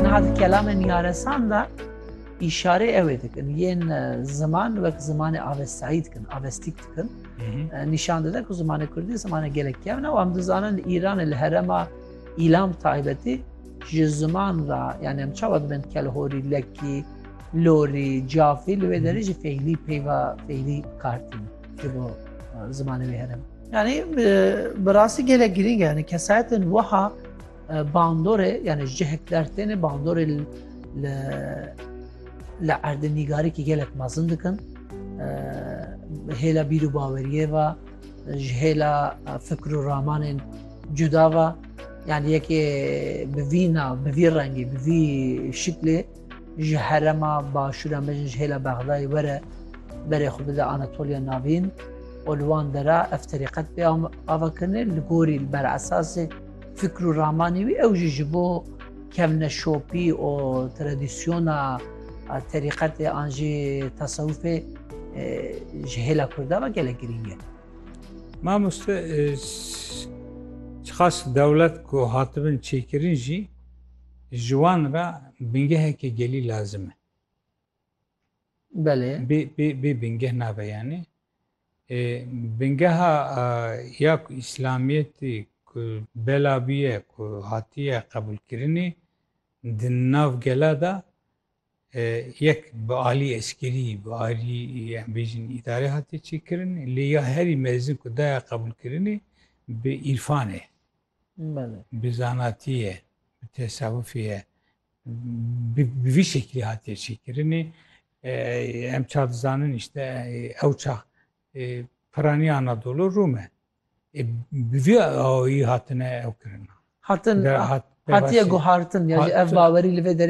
Niha di kelamên yaresan de îşarê ew ê dikin. Yên ziman wek zimanê avestayî dikin, avestîk dikin. Nîşan dide ku zimanê Kurdî zimanê gelek kevn e û em dizanin li Îranê li herema îlam taybetî ji ziman ra yani em çawa dibin kelhorî, lekî, lorî, cafî li wê derê jî feylî peyva feylî kartîn ji bo zimanê wê herem. Yani bi rastî gelek girîng e yani kesayetên wiha Bandorê yani ji cihek der têne bandorê li li erdê nîgarîkî gelek mezin dikin hêla bîr û baweriyê ve ji hêla fikr û ramanên cuda ve yani yekê bi vî nav bi vî rengî bi vî şiklê ji herema başûra me ji hêla bexdayê were berê xwe bide Anatoliya navîn û li wan dera ev terîqet pê ava kirinê li gorî li ber esasê Fikr û ramanê wî ew jî ji bo kevneşopî û tradisyona terîqetê an jî tesewufê ji hêla Kurda ve gelek girîng e. Mamoste xas dewlet ku hatibin çêkirin jî ji wan re bingehekê gelî lazim e. Belê. Bê, bê, bê bingeh nabe yani. E, bingeha e, ya ku İslamiyetî ku bela bûye ku hatiye qebûlkirinî di nav gela de e, yek bi alî eskerî, bi alî em bêjin îdarê hatiye çêkirin lê ya herî mezin ku daya qebûlkirinî bi îrfan e. Belê. Bi zanatî ye, bi tesewufî ye. bi vî şeklî hatiye çêkirinê em ça dizanin işte ew çax piranî Anadolu Rûm e bi vî awayî hatine ew kirina hatin hatiye guhartin ya ev bawerî li vê derê